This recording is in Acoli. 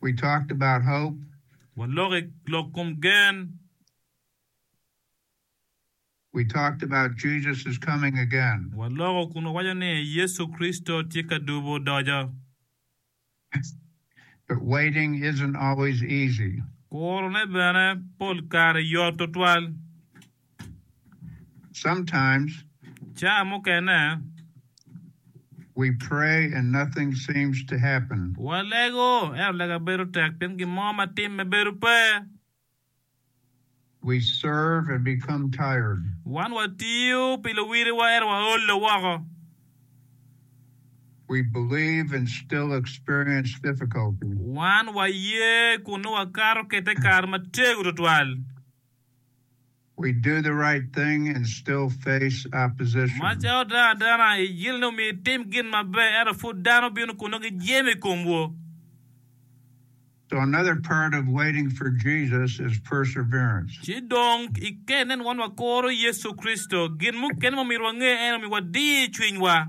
we talked about hope. Walok i lok kom gen. We talked about Jesus is coming again. Waloko kun wawaco ni Yecu Kricito tye ka dubo doco. But waiting isn't always easy. Kurone bene pol kare yot tutwal. Sometimes, Caa mukene, we pray and nothing seems to happen. walego, ento lega bedo tek pien gin mo ma timme bedo pe. We serve and become tired. Wan watiyo pi luwiliwa ento waolo woko. We believe and still experience difficulty. Wan waye kun nongo wakato kede kare matego twatwal. Macca oda adana i gin ni omiyo itim gin maber, ento pud dano bino kun nongo gijemo i komwu. Ci dong i ker nen wan wakoro Yecu Kricito. Gin mukene ma omyero wange en omiwa diyo cwinywa.